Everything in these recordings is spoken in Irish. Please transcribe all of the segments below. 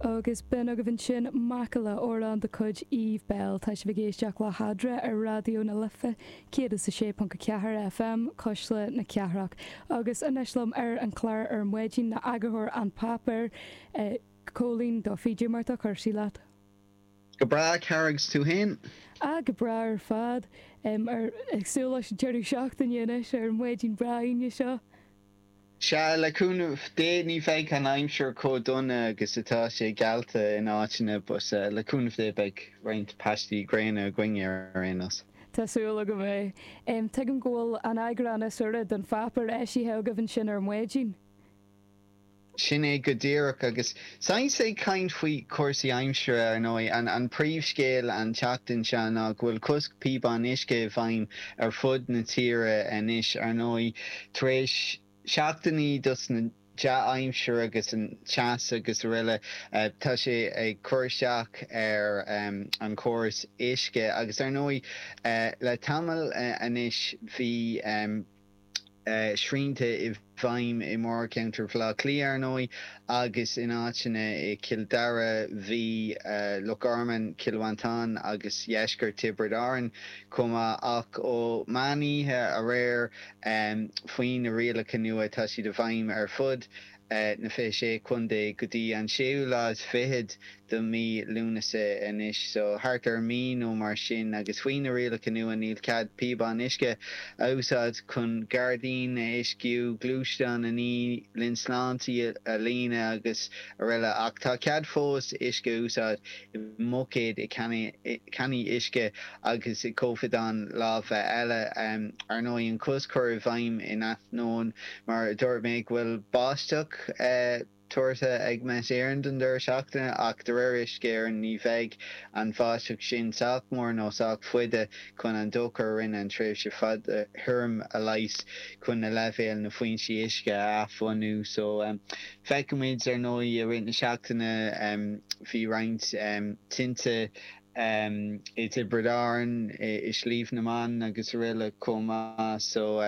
Agus b'in agaibh ansin, macalla amhrán de chuid Eve Belle. Tá sibh ag éisteacht le hAdre ar Raidió na Life 106.4 FM, Cuisle na Cathrach. Agus anois liom ar an chlár ar maidin ná eagarthóir An Páipéar, Cóilín Duffy. Cén chaoi a bhfuil cúrsaí leat. Go breá, a chara, agus tú féin? Ah, go breá ar fad. Ag súil leis an deireadh seachtaine anois ar an maidin breá Aoine seo. Sea, le cúnamh Dé, ní bheidh an aimsir chomh dona agus atá sé geallta in áiteanna, but le cúnamh Dé beidh roinnt paistí gréine againn ar aon nós. Tá súil agam é. Tuigim go bhfuil an t-eagrán is úire den pháipéar eisithe agaibh ansin ar maidin. Sin é go díreach, agus Sea, agus ag caint faoi chúrsaí aimsire, ar ndóigh. An príomhscéal an tseachtain seo ná go bhfuil cosc píobán uisce i bhfeidhm ar fud na tíre anois, ar ndóigh, tar éis seachtainí den dea-aimsir agus an teas agus aroile, tá sé ag cur isteach ar an chóras uisce. Agus, ar ndóigh, le tamall anois bhí. srianta i bhfeidhm i mórcheantar Bhaile Átha Cliath, ar ndóigh, agus in áiteanna i Cill Dara, an Mhí, Loch Garman, Cill Mhantáin agus dheisceart Thiobraid Árann chomh maith. Ach ó mheán oíche aréir, faoi na rialacha nua, tá siad i bhfeidhm ar fud. na 26 Contae go dtí an séú lá is fichead de mhí Lúnasa anois so thart ar mí nó mar sin agus faoi na rialacha nua níl cead píobáin uisce a úsáid chun gairdín a uisciú, gluaisteán a ní, linnte snámha a líonadh agus araile ach tá cead fós uisce a úsáid. i mbuicéid, i cannaí uisce agus i gcoimeádáin láimhe eile. Ar ndóigh, an cosc cur i bhfeidhm in ainneoin, mar a dúirt mé, go bhfuil báisteach tuartha ag Met Éireann don deireadh seachtaine, ach de réir Uisce Éireann ní bheidh an bháisteach sin sách mór nó sách fada chun an dochar a rinne an tréimhse fada thirim a leigheas chun na leibhéil na foinsí uisce a athbhunú. Feicfimid, ar ndóigh, i rith na seachtaine bhí roinnt tinte i dTiobraid Árann, i Sliabh na mBan agus aroile chomh maith. So,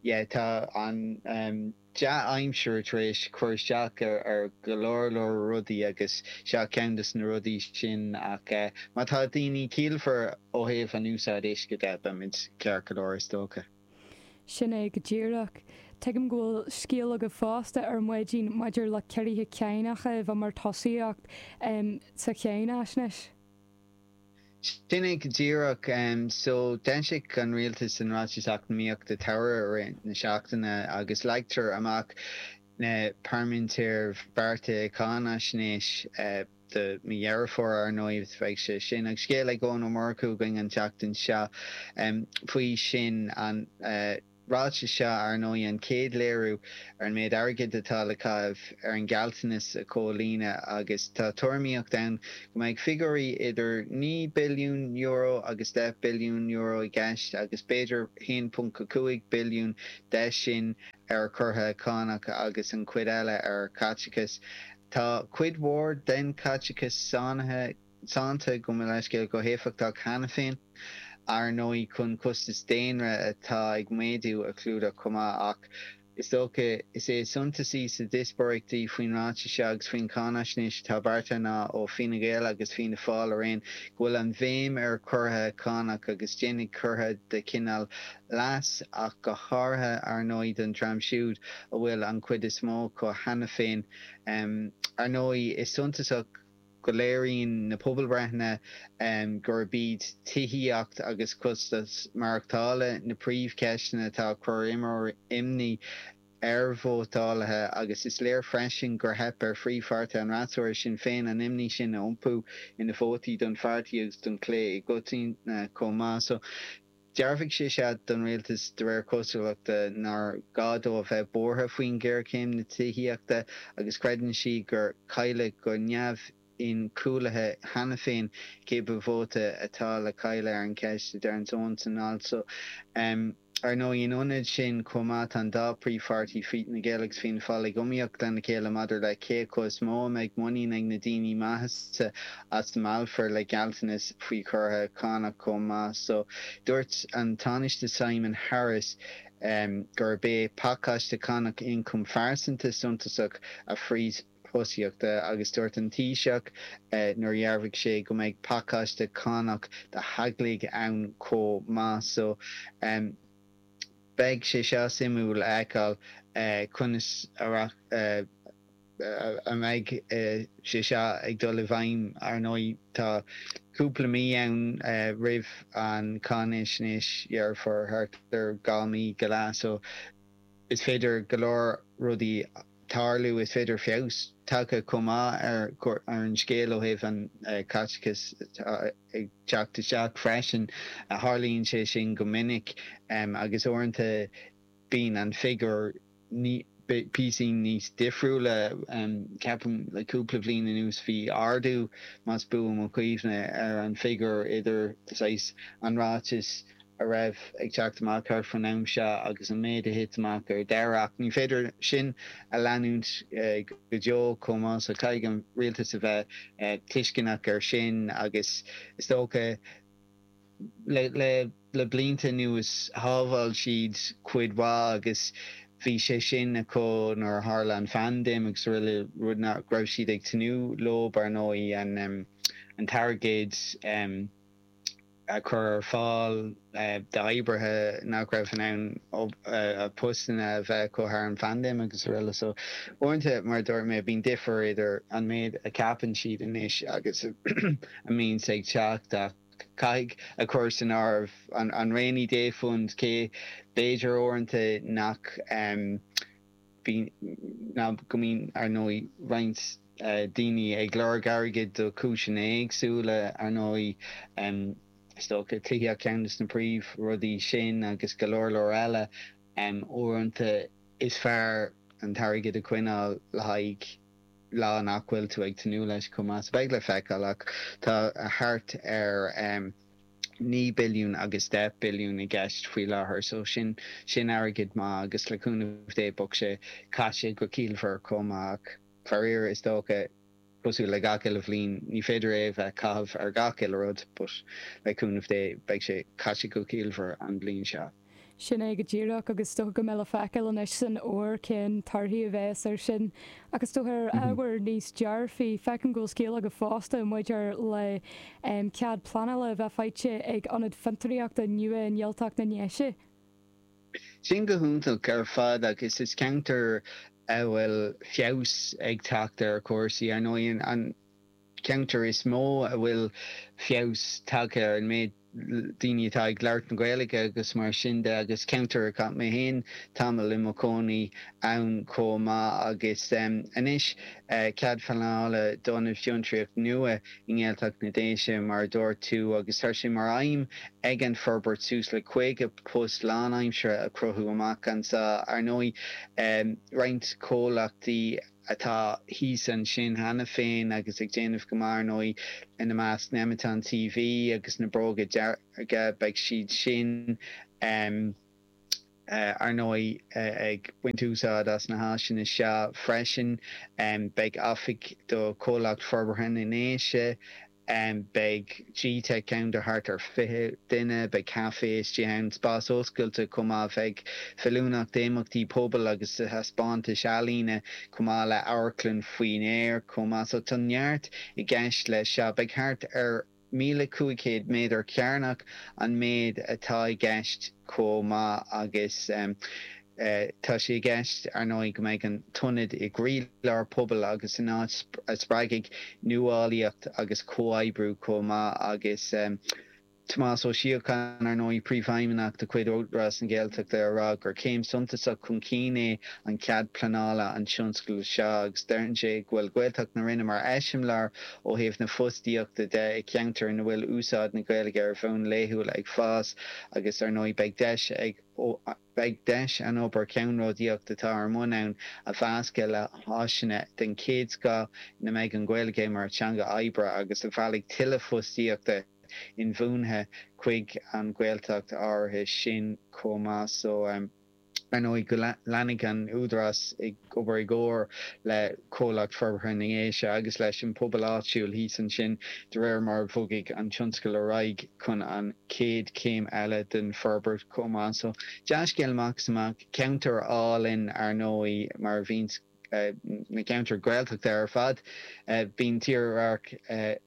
yeah, tá an dea-aimsir tar éis cur isteach ar go leor leor rudaí agus seo ceann de na rudaí sin ach má tá daoine ciallmhar ó thaobh an úsáid uisce de, beimid ceart go leor is dócha. Sin é go díreach. Tuigim go bhfuil scéal agaibh fosta ar maidin maidir le ciorruithe cánach a bheith mar thosaíocht sa Cháinaisnéis. Sin é go díreach. So, d'fhoilsigh an rialtas an Ráiteas Eacnamaíochta an tSamhraidh i rith na seachtaine agus leagtar amach na paraiméadair bheartaithe Cháinaisnéis. do mhí Dheireadh Fómhair, ar ndóigh, beidh sé sin ag scéal ag Eoin Ó Murchú againn an tseachtain seo faoi sin. An ráiteas seo, ar ndóigh, an chéad léiriú ar an méid airgid atá le caitheamh ar an ghealltanas a chomhlíonadh agus tá tuairimíocht ann go mbeidh figiúirí idir €9 billiún agus €10 billiún i gceist agus b'fhéidir €1.5 billiún de sin ar chiorruithe cánach agus an chuid eile ar chaiteachas Tá cuid mhór den Caiteachas sáinnithe sannta, gabh mo leithscéal, go héifeachtach cheana féin, ar ndóigh, chun costas daonra atá ag méadú a chlúdach chomh maith. Ach is dócha is é is suntasaí sa díospóireacht faoin ráiteas seo agus faoin cháinaisnéis atá beartaithe ná, ó Fine Gael agus Fianna Fáil araon, go bhfuil an bhéim ar chiorruithe cánach agus déanfaidh ciorruithe de chineál leas ach go háirithe, ar ndóigh, don dream siúd a bhfuil an chuid is mó acu cheana féin. Ar ndóigh, is suntasach go léiríonn na pobalbhreitheanna gurb iad tithíocht agus costas maireachtála na príomhcheisteanna atá ag cur imní ar vótálaithe agus is léir freisin gur theip ar phríomhpháirtithe an fhreasúra, Sinn Féin, an imní sin a iompú ina vótaí don pháirtí agus don chlé i gcoitinne chomh maith. Dhearbhaigh sé seo don rialtas de réir cosúlachta nár ghá dó a bheith buartha faoin ghéarchéim na tithíochta agus creideann sí gur cailleadh go neamh-inchúlaithe cheana féin cibé vóta atá le cailleadh ar an cheist, a deireann Eoin san alt so. Ar ndóigh, in ionad sin chomh maith tá an dá príomhpháirtí, Fine Gael agus Fianna Fáil, ag iomaíocht lena chéile maidir le cé acu is mó a mbeidh muinín ag na daoine maitheasa a meallfar le gealltanas faoi chiorruithe cánach chomh maith so. Dúirt an Tánaiste Simon Harris gurb é pacáiste cánach ioncaim phearsanta suntasach a phríomhthosaíocht agus dúirt an Taoiseach nuair a dhearbhaigh sé go mbeidh pacáiste cánach do theaglaigh ann chomh maith so Beidh sé seo suimiúil a fheiceáil conas a a mbeidh sé seo ag dul i bhfeidhm, ar ndóigh. Tá cúpla mí ann roimh an cháinaisnéis anois déarfá thart ar dhá mí go leath so is féidir go leor rudaí tarlú. Is féidir feabhas tagtha chomh maith ar an scéal ó thaobh an chaiteachas atá ag teacht isteach freisin. Tharlaíonn sé sin go minic agus uaireanta. Bíonn an figiúr píosín níos difriúla, ceapaim. Le cúpla bhliain anuas bhí ardú, más buan mo chuimhne, ar an figiúr idir saghas an ráiteas a raibh ag teacht amach thart fán am seo agus an méid a thit amach ar deireadh. Ach ní féidir sin a leanúint go deo chomh maith so caithfidh an rialtas a bheith tuisceanach air sin agus is dócha, Le blianta anuas, shábháil siad cuid mhaith agus bhí sé sin acu nuair a tharla an phaindéim agus aroile, rud nach raibh siad ag tnúth leo, ar ndóigh. An t-airgead a chur ar fáil d'oibrithe nach raibh in ann a bpostanna a bheith acu thar an phaindéim agus aroile. So, uaireanta, mar a dúirt mé, bíonn difear idir an méid a cheapann siad anois agus a mbíonns ag teacht. Ach. Caithfidh a chur san áireamh an rainy day fund cé b'fhéidir uaireanta nach go mbíonn ar ndóigh roinnt daoine ag lorg airgid do chúiseanna éagsúla ar ndóigh, is dócha tithíocht ceann de na príomh rudaí sin agus go leor leor eile, uaireanta is fearr an t-airgead a choinneáil le haghaidh. lá nach bhfuil tú ag tnúth leis chomh maith so beidh le feiceáil ach tá thart ar naoi billiún agus deich billiún i gceist faoi láthair so sin sin airgead maith agus le cúnamh Dé bheadh sé caite go ciallmhar chomh maith ach faraor is dócha cosúil le gach uile bhliain ní féidir é a bheith á chaitheamh ar gach uile rud but le cúnamh Dé beidh sé caite go ciallmhar an bhliain seo. Sin é go díreach, agus is dócha go mbeidh le feiceáil anois san fhómhar cén torthaí a bheas air sin. Ach is dócha, ar ábhar níos dearfaí, feicim go bhfuil scéal agat fosta maidir le cead pleanála a bheith faighte ag ionad fiontraíochta nua i nGaeltacht na nDéise. Sin go hiontach ar fad, agus is ceantar a bhfuil feabhas ag teacht ar chúrsaí, ar ndóigh, an ceantar is mó a bhfuil feabhas tagtha ar an méid. daoine atá ag labhairt na Gaeilge agus mar sin de agus ceantar a chaith mé féin tamall i mo chónaí ann chomh maith agus anois cead pleanála d'ionad fiontraíochta nua i nGaeltacht na Déise mar a dúirt tú agus tá sé mar aidhm ag an bhforbairt suas le 50 post lánaimseartha a chruthú amach anseo. Ar ndóigh roinnt comhlachtaí. atá thíos ansin cheana féin agus ag déanamh go maith, ar ndóigh, ina measc Nemeton TV agus Na Bróga Dearga, beidh siad sin, ar ndóigh, ag baint úsáid as na háiseanna seo freisin. Beidh oifig do Chomhlacht Forbartha na nDéise Beidh gteic ann do thart ar 20 duine. Beidh caife istigh ann, spás oscailte chomh maith. a bheidh feiliúnach d'imeachtaí pobail agus do thaispeántais ealaíne chomh maith le hamharclann faoin aer chomh maith. So tá neart i gceist leis seo. Beidh thart ar 1,500 méadar cearnach an méid atá i gceist chomh maith agus. Tá sé i gceist, ar ndóigh, go mbeidh an t-ionad i gcroílár pobail agus ina áit a spreagfaidh nuálaíocht agus comhoibriú chomh maith agus Tomás Ó Síocháin, ar ndóigh, Príomhfheidhmeannach de chuid Údarás na Gaeltachta ag rá gur céim suntasach chun cinn é an cead pleanála don tionscadal seo agus deir sé go bhfuil Gaeltacht na Rinne mar eiseamláir ó thaobh na fostaíochta de i gceantar ina bhfuil úsáid na Gaeilge ar bhonn laethúil ag fás agus, ar ndóigh, beidh deis ag. Beidh deis an obair cheannródaíoch atá ar bun ann a mheascadh le háiseanna den chéad scoth ina mbeidh an Ghaeilge mar theanga oibre agus a mheallfaidh tuilleadh fostaíochta inbhuanaithe chuig an Ghaeltacht áirithe sin chomh maith so ar ndóigh go leanfaidh an Údarás ag obair i gcomhar le Comhlacht Forbartha na nDéise agus leis an bpobal áitiúil thíos ansin de réir mar a bhogfaidh an tionscadal ar aghaidh chun an chéad chéim eile den fhorbairt chomh maith. So, dea-scéal amach is amach. Ceantar álainn, ar ndóigh, mar a bhíonn na ceantair Ghaeltachta ar fad. Bíonn tírdhreach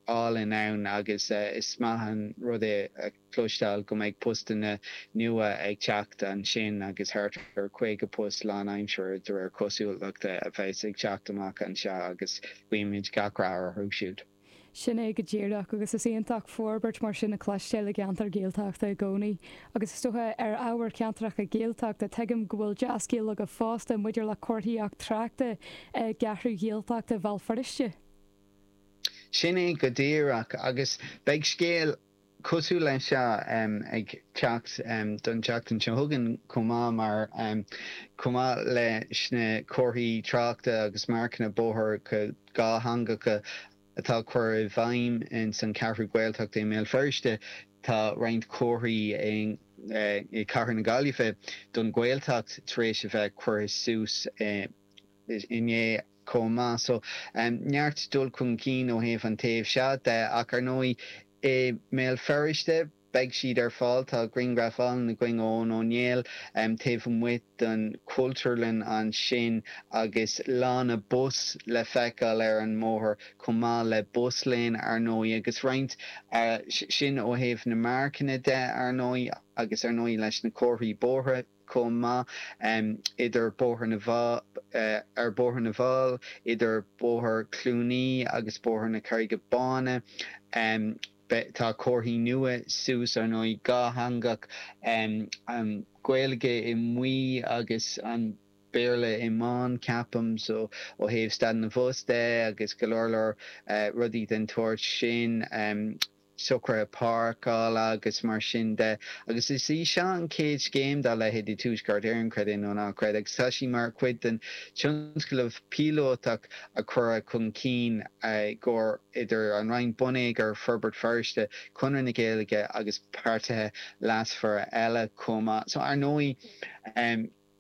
álainn ann agus is maith an rud é a chloisteáil go mbeidh postanna nua ag teacht ansin agus thart ar 50 post lánaimseartha, de réir cosúlachta, a bheas ag teacht amach anseo agus guímid gach rath orthu siúd. Sin é go díreach, agus is iontach forbairt mar sin a chloisteáil i gceantar Gaeltachta i gcónaí. Agus is dócha, ar ábhar ceantracha Gaeltachta, tuigim go bhfuil dea-scéal agaibh fosta maidir le comharthaíocht tráchta i gCeathrú Ghaeltachta Bhéal Feirste. Sin é go díreach, agus beidh scéal cosúil leis seo ag teacht don tseachtain seo chugainn chomh maith mar, chomh maith leis na comharthaí tráchta agus marcanna bóthair dhátheangacha atá curtha i bhfeidhm ins an Cheathrú Ghaeltachta i mBéal Feirste, tá roinnt comharthaí i gcathair na Gaillimhe don Ghaeltacht tar éis a bheith curtha suas i. inné chomh maith. So, neart dul chun cinn ó thaobh an taobh seo de. Ach ar ndóigh, i mBéal Feirste, beidh siad ar fáil. Tá grianghraf álainn againn ó Eoin Ó Néill taobh amuigh den Chultúrlann ansin agus lána bus le feiceáil ar an mbóthar chomh maith le bus lane, ar ndóigh, agus roinnt. Sin ó thaobh na marcanna de, ar ndóigh, agus ar ndóigh leis na comharthaí bóithre. chomh maith, idir Bóthar na bhFál, ar Bhóthar na bhFál, idir Bóthar Chluanaí agus Bóthar na Carraige Báine. Beidh, tá comharthaí nua suas, ar ndóigh, dhátheangach, an Ghaeilge i mbuí agus an Béarla i mbán, ceapaim, so ó thaobh stad na mbus de agus go leor leor rudaí den tsórt sin. socruithe páirceála agus mar sin de. Agus is í seo an chéad scéim dá leithéid i Tuaisceart Éireann, creid é nó ná creid, agus tá sí mar chuid den tionscnamh píolótach a cuireadh chun cinn i gcomhar idir an Roinn Bonneagair, Forbairt Feirste, Conradh na Gaeilge agus páirtithe leasmhara eile chomh maith. So ar ndóigh.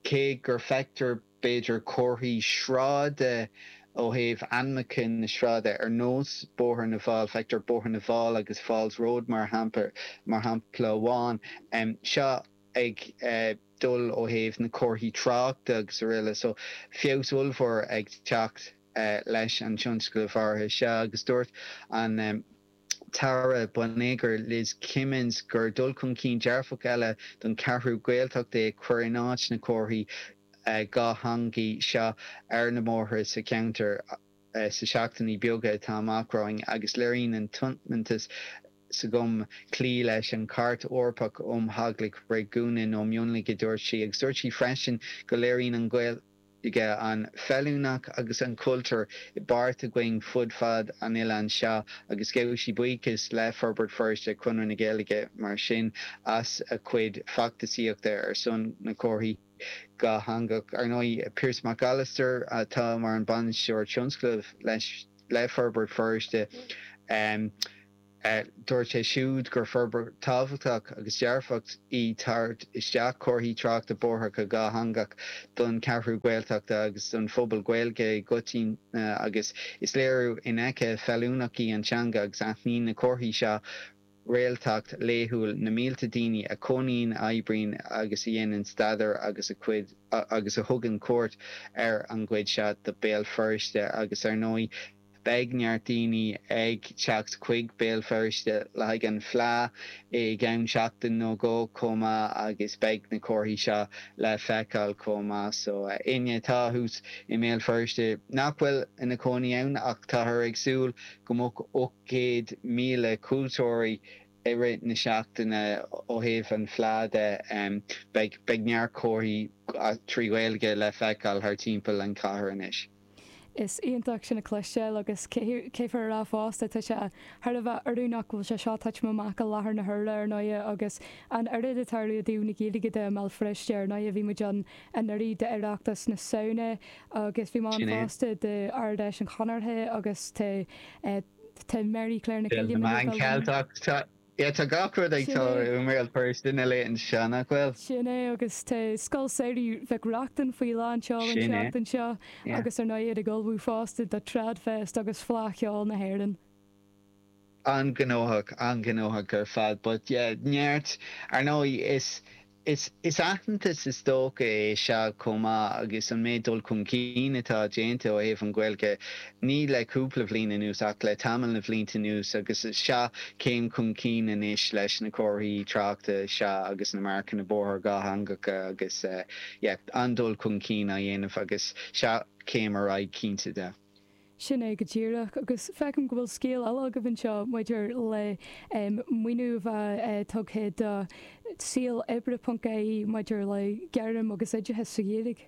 Cé gur feictear b'fhéidir comharthaí sráide ó thaobh ainmeacha na sráide, ar nós Bóthar na bhFál, feictear Bóthar na bhFál agus Falls Road mar shampla, mar shampla amháin, seo ag dul ó thaobh na comharthaí tráchta agus araile. So feabhas ollmhór ag teacht leis an tionscnamh áirithe seo agus dúirt an. tAire Bonneagair, Liz Kimmins, gur dul chun cinn dearfach eile don Cheathrú Ghaeltacht é cur in áit na comharthaí dhátheangaí seo ar na mbóithre sa cheantar sa seachtainí beaga atá amach romhainn agus léiríonn sé an tiomantas s'agam cloí leis an Chairt Eorpach um Theangacha Réigiúnacha nó Mionlaigh, a dúirt sí, agus dúirt sí freisin go léiríonn an Ghaeilge an féiniúlacht agus an chultúr i bpáirt againn fud fad an oileáin seo agus ghabh sí buíochas le Forbairt Feirste, Conradh na Gaeilge mar sin, as a chuid feachtasaíochta ar son na comharthaí dhátheangach. Ar ndóigh, Piarais Mac Alastair atá mar an bainisteoir tionscnaimh le, le Forbairt Feirste. Dúirt sé siúd gur forbairt tábhachtach agus dearfach í tabhairt isteach comharthaí tráchta bóthair dhátheangach don Cheathrú Ghaeltachta agus don phobal Gaeilge i gcoitinne agus is léiriú infheicthe féiniúlachta í an teanga agus aithníonn na comharthaí seo réaltacht laethúil na mílte daoine a chónaíonn, a oibríonn agus a dhéanann staidéar agus a d- agus a thugann cuairt ar an gcuid seo de Béal Feirste agus, ar ndóigh, Beidh neart daoine ag teacht chuig Béal Feirste le haghaidh an Fleadh i gceann seachtain nó dhó chomh maith agus beidh na comharthaí seo le feiceáil chomh maith. So, éinne atá thuas i mBéal Feirste nach bhfuil ina chónaí ann ach táthar ag súil go mbeadh 800,000 cuairteoirí i rith na seachtaine ó thaobh an Fleadh de, beidh neart comharthaí trí Ghaeilge le feiceáil thar timpeall an chathair anois. Is iontach é sin a chloisteáil agus caithfear a rá fosta, tá sé thar a bheith oiriúnach go bhfuil sé seo tagtha amach i láthair na huaire, ar ndóighe, agus an oiread ag tarlú i dtaobh na Gaeilge de i mBéal Feirste, ar ndóighe. Bhí muid ann anuraidh d'Oireachtas na Samhna agus bhí mé ann fosta d'Ard-Fheis an Chonartha agus tá mar a déarfá, Féile na Meán Ceilteach, Yeah, tá gach rud ag tarlú i mBéal Feirste na laethanta seo, nach bhfuil? Sin é, agus tá Scoil Samhraidh Mhic Reachtain faoi lán seoil an tseachtain seo agus, ar ndóigh, iad ag ullmhú fosta do TradFest agus Fleadh Cheoil na hÉireann. An-ghnóthach, an-ghnóthach ar fad. But yeah, neart, ar ndóigh, is Is aitheantas is dócha é seo chomh maith agus an méid dul chun cinn atá déanta ó thaobh an Ghaeilge, ní le cúpla bhliain anuas ach le tamall de bhlianta anuas agus seo céim chun cinn anois leis na comharthaí tráchta seo agus na marcanna bóthair dhátheangacha agus an-dul chun cinn á dhéanamh agus seo céim ar aghaidh cinnte de. Sin é go díreach, agus feicim go bhfuil scéal eile agaibh anseo maidir le maoiniú a bheith tugtha do Saol Oibre ponc ie maidir le gairm agus oideachas sa Ghaeilge.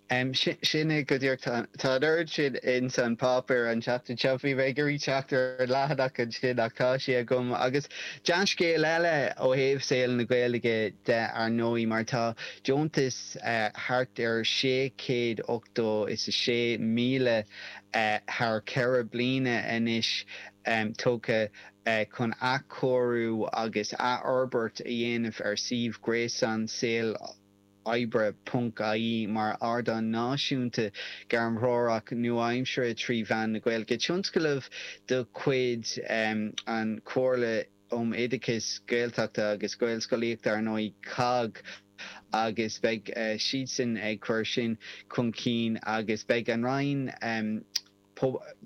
Sin é go díreach, tá an oiread sin ins an páipéar an tseachtain seo, bhí mé ag iarraidh teacht ar an leathanach ansin ach tá sé agam, agus dea-scéal eile ó thaobh saol na Gaeilge de ar ndóigh mar tá deontas thart ar sé chéad ochtó is a sé míle thar cheithre bliana anois tugtha chun athchóiriú agus athfhorbairt a dhéanamh ar suíomh gréasáin saol oibre ponc ie mar ardán náisiúnta gairmthreorach nua-aimseartha trí mheán na Gaeilge, tionscnamh de chuid an Chomhairle. um Oideachas Gaeltachta agus Gaelscolaíochta, ar ndóigh, COGG, agus beidh siadsan ag cur sin chun cinn agus beidh an Roinn um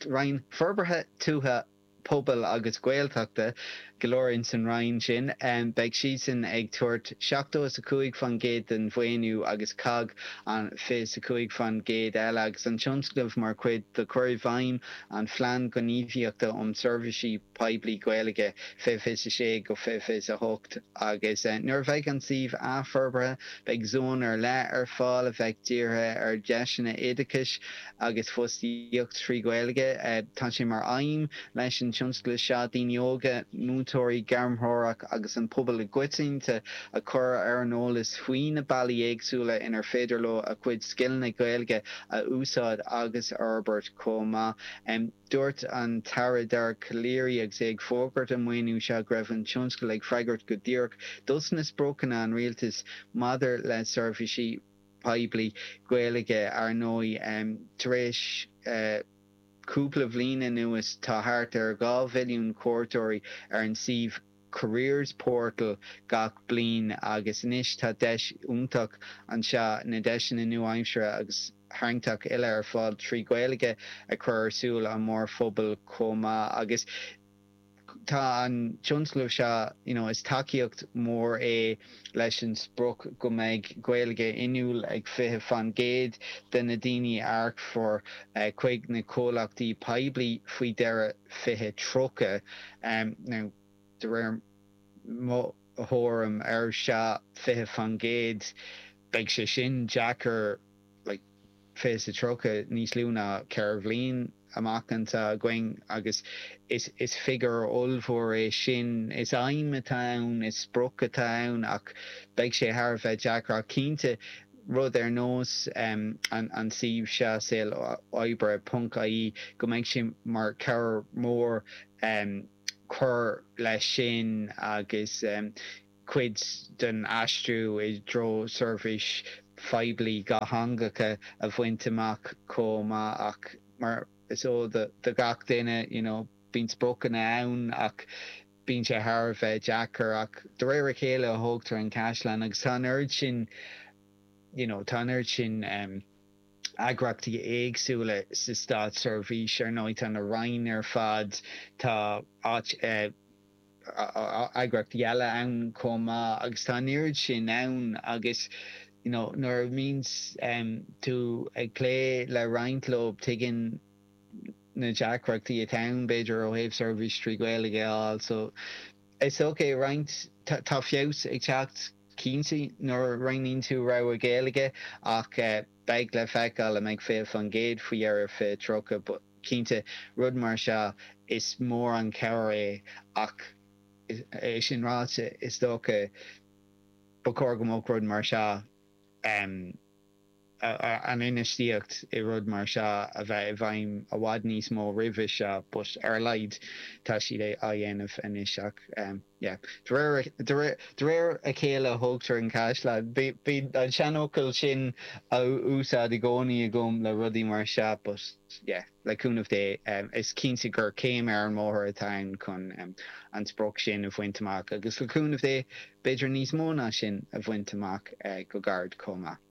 Roinn Forbartha Tuaithe, Pobail agus Gaeltachta, go leor in san Roinn sin, beidh siadsan ag tabhairt seachtó is a cúig faoin gcéad den mhaoiniú agus COGG an fiche is a cúig faoin gcéad eile agus an tionscnamh mar chuid de chur i bhfeidhm an Phlean Gníomhaíochta um Seirbhísí poiblí Gaeilge, 2026 go 2028, agus nuair a bheidh an suíomh athfhorbartha, beidh zón ar leith ar fáil a bheidh dírithe ar dheiseanna oideachais agus fostaíocht trí Ghaeilge. Tá sé mar aidhm leis an tionscadal seo daoine óga, múinteoirí, gairmthreoraithe agus an pobal i gcoitinne a chur ar an eolas faoi na bealaí éagsúla inar féidir leo a gcuid scileanna Gaeilge a úsáid agus a fhorbairt chomh maith. Dúirt an tAire Dara Calleary agus é ag fógairt an maoiniú seo go raibh an tionscadal ag freagairt go díreach dos na spriocanna an Rialtais maidir le seirbhísí poiblí Gaeilge. Ar ndóigh, tar éis cúpla bliain anuas tá thart ar dhá mhilliún cuairteoirí ar an suíomh Careers Portal gach bliain agus anois tá deis iontach anseo na deiseanna nua-aimseartha agus tarraingteach uile ar fáil trí Ghaeilge a chur ar súile an mhórphobail chomh maith agus tá an tionscnamh seo you know is tacaíocht mhór é leis an sprioc go mbeidh Gaeilge inniúil ag 20 faoin gcéad de na daoine a earcfar chuig na comhlachtaí poiblí faoi dheireadh 2030 now de réir mo thuairim ar an fiche faoin gcéad, beidh sé sin deacair, like fiche sa tríocha, níos lú ná ceithre bhliain amach atá againn agus is figiúr ollmhór é sin. Is aidhm atá ann, is sprioc atá ann ach beidh sé thar a bheith deacair ach cinnte rud ar nós an an suíomh seo saol oibre ponc ie go mbeidh sé mar chabhair mhór. Cur leis sin agus cuid den aistriú i dtreo seirbhís phoiblí dhátheangach a bhaint amach chomh maith ach mar is eol do gach duine, you know, bíonn spriocanna ann ach bíonn sé thar a bheith deacair ach de réir a chéile a thógtar an caisleán agus tá an oiread sin, you know, tá an oiread sin. eagraíochtaí éagsúla sa státseirbhís. Ar ndóigh, tá na Roinn ar fad, tá eagraíochtaí eile ann chomh maith agus tá an oiread sin ann agus you know nuair a bhíonn tú ag plé le roinnt leo, tuigeann tú na deacrachtaí atá ann, b'fhéidir, ó thaobh seirbhís trí Ghaeilge a fháil. So, is dócha roinnt, tá feabhas ag teacht. cinnte nuair a roghnaíonn tú rogha Ghaeilge ach beidh sé le feiceáil an mbeidh 20% faoi dheireadh 2030 but cinnte rud mar seo is mór an chabhair é ach é sin ráite is dócha ba chóir go mbeadh rud mar seo an infheistíocht i rud mar seo a bheith i bhfeidhm i bhfad níos mó roimhe seo but ar a laghad tá siad á dhéanamh anois ach yeah de réir a chéile a thógtar na caisleáin. Bíonn an seanfhocal sin á úsáid i gcónaí agam le rudaí mar seo but yeah le cúnamh Dé is cinnte gur céim ar an mbóthar atá ann chun an sprioc sin a bhaint amach agus le cúnamh Dé b'fhéidir níos mó ná sin a bhaint amach go gairid chomh maith.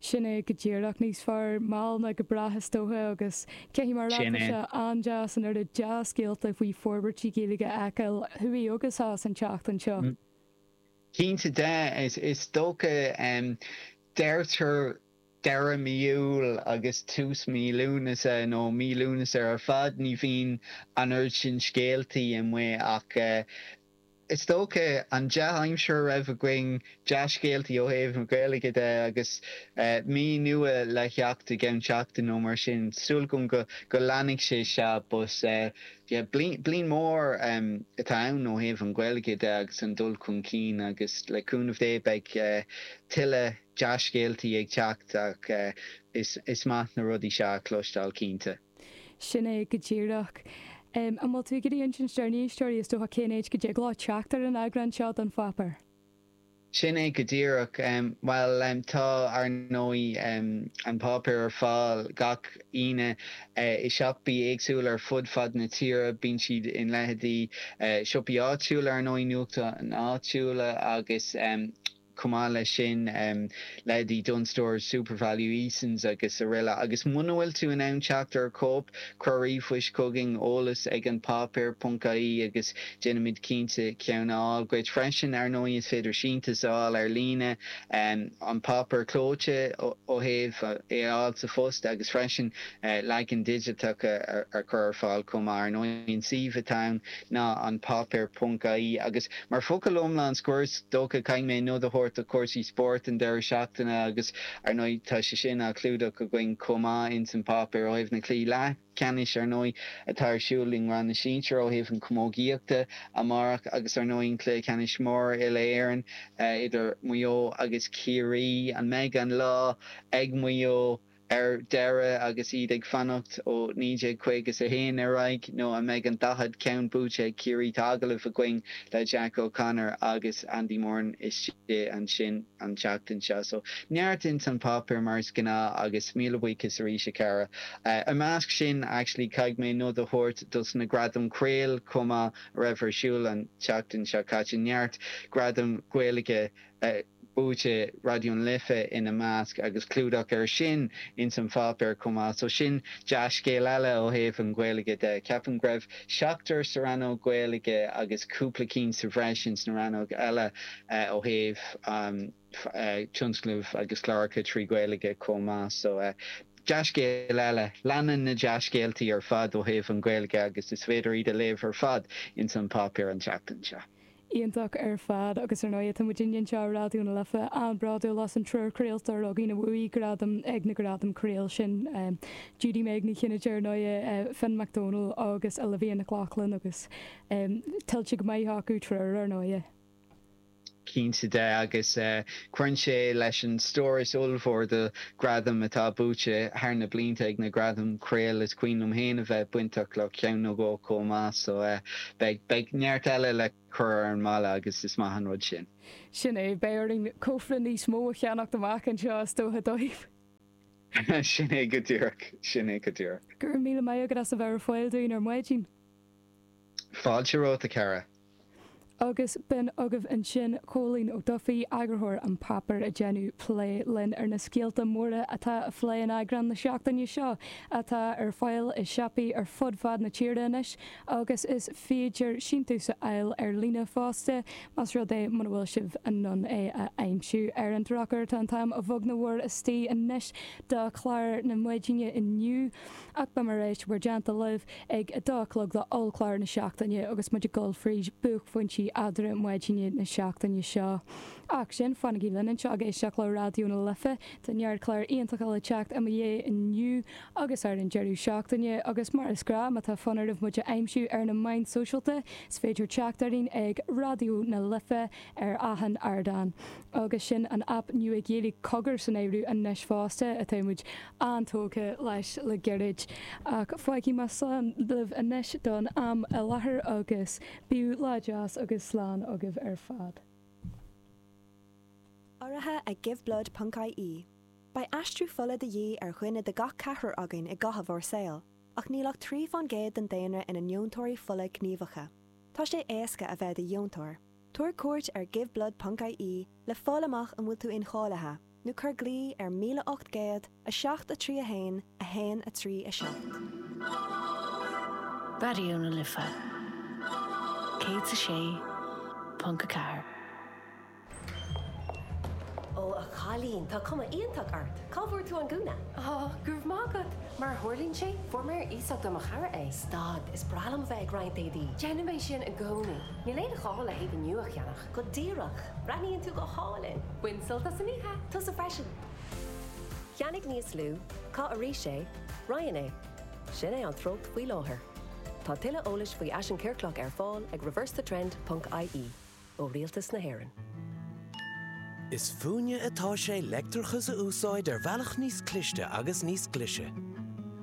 Sin é go díreach. Níos fearr mall ná go brách is dócha agus caithfidh mé a rá, tá sé an-deas an oiread dea-scéalta faoi forbairtí Gaeilge a fheiceáil thuaidh agus theas an tseachtain seo. Cinnte de, is dócha. Deirtear deireadh mí Iúil agus tús mí Lúnasa, nó mí Lúnasa ar fad, ní bhíonn an oiread sin scéaltaí amuigh ach. Is dócha, an dea-aimsir a raibh againn, dea-scéaltaí ó thaobh na Gaeilge de agus mí nua le theacht i gceann seachtain nó mar sin, súil agam go leanfaidh sé seo but yeah bliain mór atá ann ó thaobh an Ghaeilge de agus an dul chun cinn agus le cúnamh Dé beidh tuilleadh dea-scéaltaí ag teacht ach is maith na rudaí seo a chloisteáil cinnte. Sin é go díreach. An bhfuil tú ag iarraidh insint dár n-éisteoirí, is dócha, cén áit go dtig leo teacht ar an eagrán seo den pháipéar? Sin é go díreach. Bhuel, tá, ar ndóigh, an páipéar ar fáil gach Aoine i siopaí éagsúla ar fud fad na tíre. Bíonn siad in leitheidí siopaí áitiúla, ar ndóigh, nuachtáin áitiúla agus. Chomh maith leis sin, leithéidí Dunnes Stores, Supervalu, Easons agus aroile. Agus muna bhfuil tú in ann teacht ar chóip, cuir ríomhphost chugainn, eolas ag an páipéar, ponc-IE, agus déanfaimid cinnte ceann a fháil dhuit. Freisin, ar ndóigh, is féidir síntiús a fháil ar líne, an páipéar clóite ó thaobh, é a fháil sa phost, agus freisin leagan digiteach a chur ar fáil chomh maith. Ar ndóigh, an suíomh atá ann ná an páipéar ponc IE agus mar focal iomlán scoir is dócha caithfidh mé nod a thabhairt do chúrsaí spóirt an deireadh seachtaine agus ar ndóigh tá sé sin á chlúdach againn chomh maith ins an bpáipéar ó thaobh na cluichí leathcheannais ar ndóigh atá ar siúl i ngrád na sinsir ó thaobh an chamógaíochta amárach agus ar ndóigh an cluiche ceannais mór uile Éireann idir Maigh Eo agus Ciarraí an mbeidh an lá ag Maigh Eo ar deireadh agus iad ag fanacht ó 1951 ar aghaidh nó an mbeidh an daichead ceann buaite ag Ciarraí? Tá agallamh againn le Jack O'Connor agus Andy Moran istigh ansin an tseachtain seo so neart ins an páipéar mar is gnáth agus míle buíochas arís a Chiara. I measc sin actually caithfidh mé nod a thabhairt dos na Gradaim Craol chomh maith a raibh ar siúl an tseachtain seo caite. Neart gradam Ghaeilge a. buaite Raidió na Life ina measc, agus clúdach air sin ins an pháipéar chomh maith, so sin dea-scéal eile ó thaobh an Ghaeilge de. Ceapaim go raibh seachtar sa rannóg Ghaeilge agus cúpla cinn sa bhreis ins na rannóga eile ó thaobh tionscnamh agus cláracha trí Ghaeilge chomh maith, so dea-scéal eile. Leanann na dea-scéaltaí ar fad ó thaobh an Ghaeilge agus is féidir leat iad a léamh ar fad ins an pháipéar an tseachtain seo. iontach ar fad agus ar ndóigh tá muid inniu anseo ar Raidió na Life an-bhródúil as an triúr craoltóirí againn a bhuaigh gradam ag na Gradaim Craol sin, Judy Meg Ní Chinnéide ar ndóigh, Finn Mac Domhnaill agus Olivia Nic Lochlainn agus tuillte go maith acu triúr ar ndóigh. Cinnte de agus Cuireann sé leis an stóras ollmhór de ghradaim atá buaite thar na blianta ag na Gradaim Craol, is cuimhin liom féin a bheith bainteach le ceann nó dhó chomh maith, so beidh neart eile le cur ar an mballa agus is maith an rud sin. Sin é, beidh orainn cófra níos mó a cheannacht amach anseo is dócha dóibh! Sin é go díreach, sin é go díreach. Go raibh míle maith agat as a bheith ar fáil dúinn ar maidin. Fáilte romhat, a chara. Agus b'in agaibh ansin Cóilín Ó Dufaigh, eagarthóir An Páipéar ag déanamh plé linn ar na scéalta móra atá á bplé in eagrán na seachtaine seo atá ar fáil i siopaí ar fud fad na tíre anois agus is féidir síntiús a fháil ar líne fosta más rud é muna bhfuil sibh in ann é a aimsiú ar an drochuair. Tá an t-am a bheag nó a mhór istigh anois do chlár na maidine inniu. Ach beidh mé ar ais mar a dúirt mé libh ag a dó a chlog do Ollchlár na Seachtaine agus muid ag dul fríd buaicphointí Eadra Maidine na seachtaine seo. Ach fanaigí linn anseo ag éisteacht le Raidió na Life, tá neart cláir iontacha le teacht i mo dhiaidh inniu agus ar an deireadh seachtaine, agus mar is gnáth, má tá fonn oraibh muid a aimsiú ar na meáin sóisialta, is féidir teacht orainn ag Raidió na Life ar achan ardán. Agus sin an aip nua Ghaeilge Cogar san áireamh anois fosta, atáimid an-tógtha leis le gairid, ach fágfaidh mé slán libh anois don am i láthair agus bíodh lá deas agus slán agaibh ar fad. Urraithe ag Giveblood ponc ie, beidh aistriú fola de dhíth ar dhuine de gach ceathrar againn i gcaitheamh ár saoil, ach níl ach trí fán gcéad den daonra ina ndeontóirí fola gníomhacha. Tá sé éasca a bheith i do dheontóir. Tabhair cuairt ar giveblood.ie le fáil amach an bhfuil tú incháilithe, nó cuir glao ar 1800 7 3 1 1 3 7. Raidió na Life 106.4. Ó a chailín, tá cuma iontach ort! Cá bhfuair tú an gúna? Ó, go raibh maith agat! Mar a tharlaíonn sé, fuair mé ar iasacht ó mo chara é. Stad, is breá liom a bheith ag roinnt éadaí. Déanaim é sin i gcónaí. Níl aon ghá le héide nua a cheannach. Go díreach! Breathnaíonn tú go hálainn! Bain sult as an oíche! Tusa freisin! Ceannaigh níos lú, caith arís é, Roinn é. Sin é an treocht faoi láthair. Tá tuilleadh eolais faoi fhaisean ciorclach ar fáil ag reversethetrend ponc ie, ó Rialtas na hÉireann. Is fúinne atá sé leictreachas a úsáid ar bhealach níos cliste agus níos glise.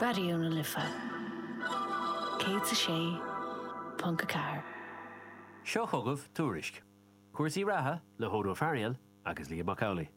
Raidió na Life 106.4. Seo chugaibh Tuairisc cúrsaí reatha le hAodh Ó Fearghaíl agus Liam Mac Amhlaigh.